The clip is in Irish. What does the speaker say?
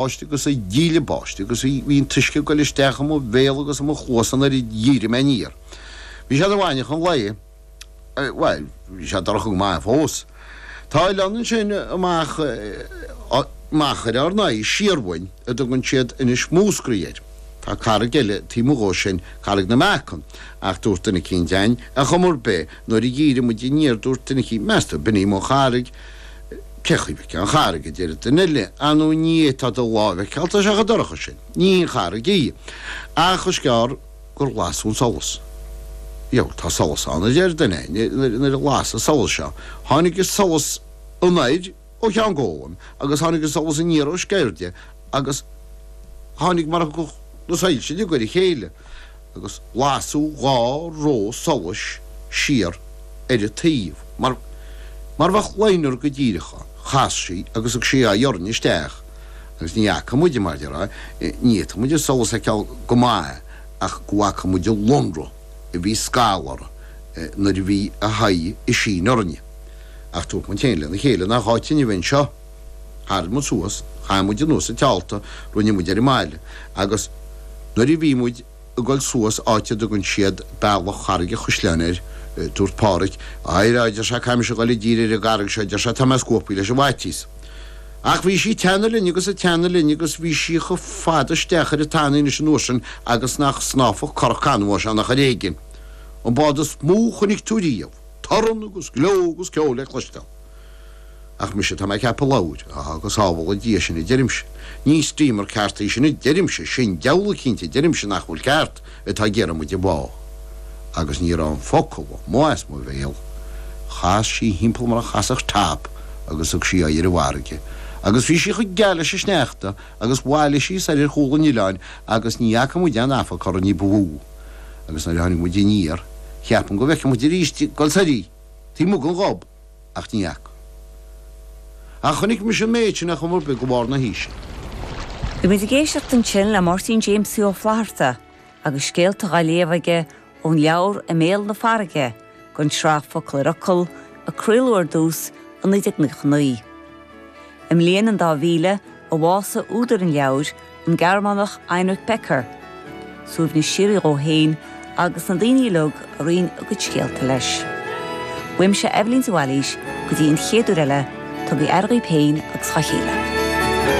báiste agus an díle báiste agus bhí, bhí an t-uisce ag goil isteach i mo bhéal agus i mo chluasa nuair a dhírigh muid aniar. Bhí sé i bhfáinne an lae, bhuel, bhí sé dorcha go maith fós. Tá oileán ansin amach, amach ar ár n-aghaidh, siar uainn, a dtugann siad Inis Múscraí air. Tá carraig eile taobh amuigh dhó sin, Carraig na Meacan, ach dúirt duine eicínt, dhínn, ar chuma ar bith, nuair a dhírigh muid aniar, dúirt duine eicínt, meas tú, ab in í an charraig? Cé chaoi a bhfeicfeá an charraig, a deir duine eile, nuair nach bhféadfá do láimh a fheiceáil atá sé chomh dorcha sin. Ní hin carraig í, ach is gearr gur las an solas. Bheul, tá solas ann, a deir duine eile, nuair a las an solas seo, tháinig an solas anoir ó Cheann Gólaim agus tháinig an solas aniar ó Sceirde agus tháinig mar a thiocfadh na soilse i ngar dhá chéile. agus lasadh dhá ró solais siar ar a taobh mar a bheadh liner go díreach ann, chas sí agus thug sí aghaidh orainn isteach agus ní fhaca muide mar a déarfá, ní fhéadfadh muid an solas a fheiceáil go maith ach go bhfaca muid an lonradh a bhí scalta nuair a bhí a haghaidh isteach orainn. Ach dúirt muid féin lena chéile, nach áit dúinn a bheith anseo? Tharraing muid suas, chaith muid anuas an teálta, rinne muid ar an mbaile, agus nuair a bhí muid ag dul suas, áit a dtugann siad Bealach Charraig an Chuisleáin air, dúirt Páraic, Éirigh, a deir sé, caithfimid a dhul i dtír ar an gcarraig seo, a deir sé, tá mé scanraithe leis an bhfaitíos. Ach bhí sí ag teannadh linn agus ag teannadh linn agus bhí sí chomh fada isteach ar an tanaí anois an uair sin agus nach snámhfadh currach canbháis ann ach ar éigin. An bád is mó a chonaic tú riamh. Torann agus gleo agus ceol le cloisteáil. Ach mise tá mé ag ceapadh a labhair, á go sábhála Dia sinn a deirimse, ní steamer ceart í sin a deirimse, sin diabhal cinnte a deirimse nach bhfuil ceart atá ag iarraidh muid a bhá. Agus ní raibh an focal amuigh as mo bhéal. Chas sí thimpeall mar a chasfadh top agus thug sí aghaidh ar an bhfarraige. Agus bhí sí chomh geal leis an sneachta agus bhailigh sí soir ar chúl an oileáin agus ní fhaca muid aon afarc uirthi ní ba mhó. Agus nuair a tháinig muid aniar cheap muid go bhfeicfeadh muid arís í ag dul soir, taobh amuigh de. ach ní fhaca. Ach chonaic mise an méid sin achar beag roimh lár na haoise. Bhí muid ag éisteacht ansin le Máirtín Jamesie Ó Flatharta agus scéalta dhá léamh aige ón leabhar I mBéal na Farraige don tsraith Focal ar Fhocal a craoladh ar dtús i 1999. I mbliain an dá mhíle, a bhásaigh údar an leabhair, an Gearmánach Heinrich Becker, suaimhneas síoraí dhó fhéin agus do na daoine uilig a roinn a gcuid scéalta leis. Uaimse Eibhlín de Bhailís go dtí an chéad uair eile, tugaigí aire dhaoibh féin agus dhá chéile.